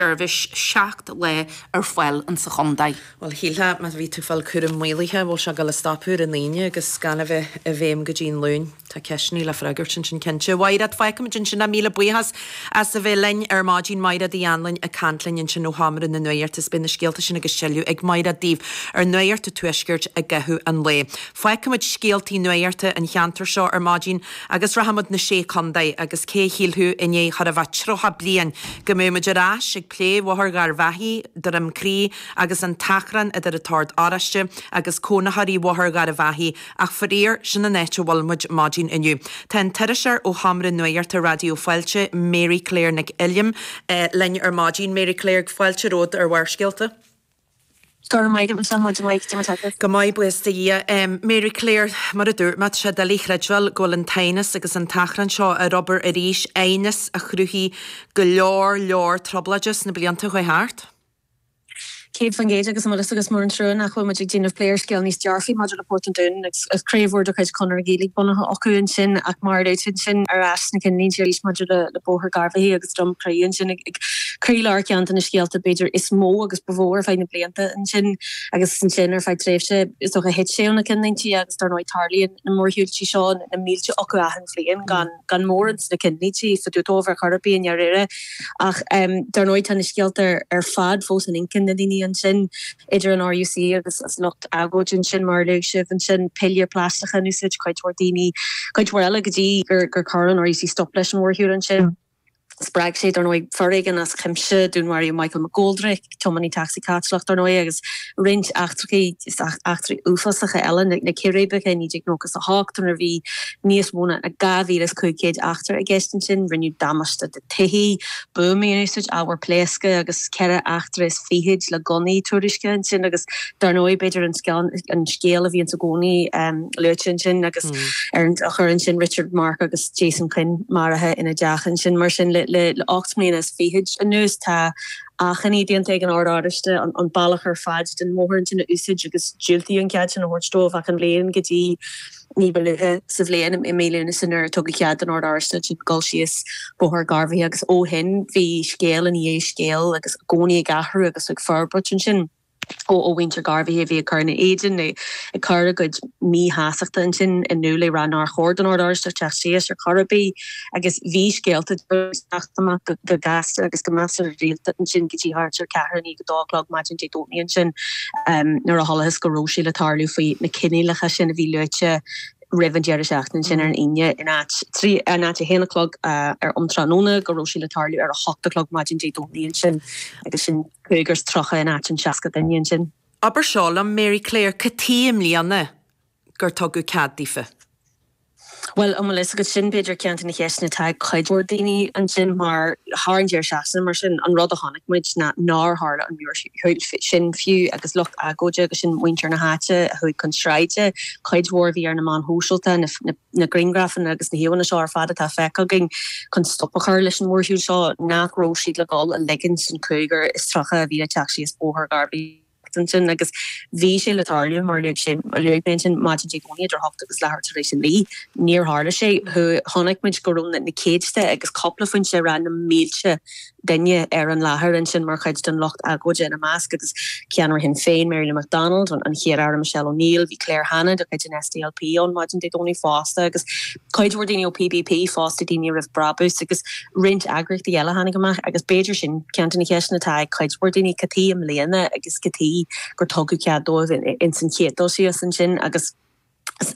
seirbhís seacht lá ar fáil in sa chontae. Bhuel, shílfeá, má bhí tú fáil cúram maolaithe, an bhfuil sé ag gabháil a stopadh ar an Aoine agus gan a bheith i bhfeidhm go dtí an Luain? Tá ceisteannaí le freagairt ansin cinnte. Mhaighreád, fágfaimid ansin é. Míle buíochas as a bheith linn ar maidín. Maighreád Uí Anluain ag caint linn ansin ó Sheomra na Nuachta is beidh na scéalta sin agus tuilleadh ag Maighreád daoibh ar Nuacht an Tuaiscirt i gcaitheamh an lae. Fágfaimid scéaltaí nuachta an cheantair seo ar maidín. Agus rachaidh muid 'na Sé Chontae agus cé a shílfeadh i ndiaidh chóir a bheith tríocha bliain go mbeadh muid ar ais ag plé Bhóthar Gharbhachaidh, Droim Crí agus an t-achrann idir an tOrd Oráiste agus cónaitheoirí Bhóthar Gharbhachaidh ach faraor sin an áit a bhfuil muid maidin inniu. Tá an t-iriseoir ó Sheomra Nuachta Raidió Fáilte, Mary Claire Nic Uilliam, linn ar maidin. Mary Claire, fáilte romhat ar Bharrscéalta. Go raibh maith agat, Michelle, maidin mhaith, cad é mar atá tú? Go maith, buíochas do Dhia. Mary Claire, Mar a dúirt mé, tá sé doiligh a chreidbheáil go bhfuil an t-aighneas agus an t-achrann seo ar obair arís, aighneas a chruthaigh go leor, leor trioblóide sna blianta a chuaigh thart. Céad faoin gcéad agus an bhfuil fhios agat, is mór an trua nach bhfuil muid ag déanamh plé ar scéal níos dearfaí maidir le Port an Dúin agus craobh úr de chuid Chonradh na Gaeilge bunaithe acu ansin ach mar a luaigh tú ansin ar ais sna cinnlínte arís maidir le Bóthar Gharbhachaidh. Droim Crí ansin ag croílár ceann de na scéalta b'fhéidir is mó agus ba mhó ar feadh na blianta ansin agus ansin ar feadh tréimhse is dócha thit sé ó na cinnlínte agus dar ndóigh tarlaíonn na mórshiúiltí seo na mílte acu achan bhliain gan gan mórán de na cinnlínte fá dtaobh daofa ar chor ar bith i ndáiríre ach dar ndóigh tá na scéalta ar fad fós in inchinn na ndaoine ansin. idir an RUC agus an lucht agóide ansin, mar a luaigh sibh, ansin piléir phlaisteacha in úsáid, cuid mhór daoine, cuid mhór eile go dtí gur chuir an RUC stop leis an mhórshiúl ansin. Spreag sé, dar ndóigh, foréigean as cuimse, dúnmharaíodh Michael McGoldrick, tiománaí tacsaí Caitliceach, dar ndóigh, agus roinnt eachtraí, eachtraí uafásacha eile, na círéibeacha i 1998 nuair a bhí níos mó ná 2,500 eachtra i gceist ansin, rinneadh damáiste do thithe buamaí in úsáid, ábhar pléasctha agus ceithre eachtra is fichid le gunnaí tuairiscithe ansin agus dar ndóigh b'fhéidir an sceon, an scéal a bhíonns i gcónaí luaite ansin agus ar an triúr ansin Richard Mark agus Jason Quinn maraithe ina dteach ansin. Mar sin le le le ocht mbliana is fichid anuas tá achainí déanta ag an Ord Oráiste an bealach ar fad den mbóthar ansin a úsáid agus diúltaíodh an cead sin a thabhairt dóibh achan bhliain go dtí Ní ba luaithe sa bhliain, i mí Lúnasa, nuair a tugadh cead don Ord Oráisteach dul síos Bóthar Gharbhachaidh agus ó shin bhí scéal ina dhiaidh scéil agus i gcónaí ag athrú agus ag forbairt ansin ó mhuintir Gharbhachaidh a bhí ag cur ina éadan nó ag cur a gcuid míshástachta ansin in iúl ag rá nár chóir don Ord Oráisteach teacht síos ar chor ar bith. agus bhí scéalta ag teacht amach go gasta agus go measartha rialta ansin go dtí thart ar ceathrú i ndiaidh a dó a chlog maidin Dé Domhnaigh ansin nuair a chualathas go raibh sé le tarlú faoi na coinníollacha sin a bhí luaite roimh an deireadh seachtaine sin ar an Aoine in áit a haon a chlog ar um tráthnóna go raibh sé le tarlú ar a hocht a chlog maidin Dé Domhnaigh ansin agus sin cúigear is tríocha in áit an seasca duine ansin. Abair seo liom, Mary Claire, cad chuige i mbliana? gur tugadh cead daofa. Bhuel, an bhfuil fhios agat, sin b'fhéidir ceann de na ceisteanna atá ag cuid mhór daoine ansin mar thar an deireadh seachtaine, mar sin, an rud a chonaic muid ná nár tharla an mórshiúl sin fiú agus lucht agóide agus sin muintir na háite a chuaigh chun sráide, cuid mhór a bhí ar na meáin shóisialta, na grianghrafanna agus na híomhánna seo ar fad atá feicthe againn chun stop a chur leis an mhórshiúil seo, nach raibh siad le dhul a ligint an cúigear is tríocha a bhí le teacht síos Bóthar Gharbhachaidh? agus ansin agus bhí sé le tarlú mar luaigh sé luaigh mé ansin maidin Dé Domhnaigh idir a hocht agus leathuair tar éis a naoi. Níor tharla sé. Chuaigh chonaic muid go raibh na na céadta agus cúpla foinse ag rá na mílte duine ar an láthair ansin mar chuid den lucht agóide, ina measc agus ceannaire Shinn Féin, Mary Lou McDonald, an Chéad-Aire Michelle O'Neill, bhí Claire Hanna de chuid an SDLP ann maidin Dé Domhnaigh fosta agus. cuid mhór daoine ó PBP fosta, Daoine Roimh Brabús agus roinnt eagraíochtaí eile a tháinig amach agus b'fhéidir sin ceann de na ceisteanna atá ag cuid mhór daoine, cad chuige i mbliana agus cad chuige gur tugadh cead dóibh ins an chéad dul síos ansin agus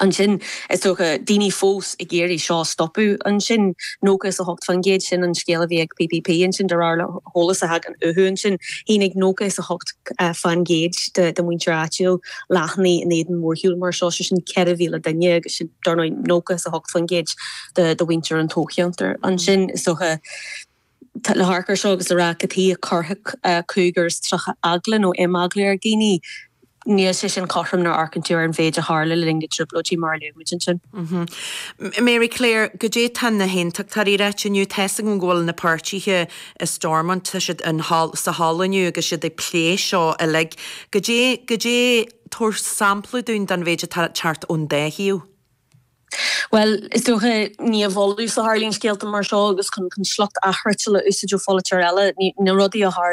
ansin is dócha daoine fós ag iarraidh seo a stopadh ansin. Nócha is a hocht faoin gcéad, sin an scéal a bhí ag PBP ansin de réir le heolas a thagann uathu ansin. Shínigh nócha is a hocht faoin gcéad de mhuintir áitiúil. achainí in éadan mórshiúl mar seo, sé sin 4,000 duine agus sin dar ndóigh 98% de mhuintir an toghcheantair. Ansin is dócha, le hamharc ar seo agus le rá cad chuige a gcuirfeadh 35 eagla nó imeagla ar dhaoine, níl sé sin cothrom nuair a amharcann tú ar an mhéid a tharla le linn na dtrioblóidí mar a luaigh muid ansin. Mary Claire, Goidé tá na hAontachtóirí a ráit inniu? Tá a fhios agam go bhfuil na páirtithe i Stormont. Tá siad in, thall, sa halla inniu agus iad ag plé seo uilig. Goidé, goidé, tabhair sampla dúinn den mhéid atá ag teacht ón dá thaobh. Bhuel, is dócha, ní i bhfolús a tharlaíonn scéalta mar seo agus chun sliocht athfhriotail a úsáid ó pholaiteoir eile, ní na rudaí a tharlaíonn.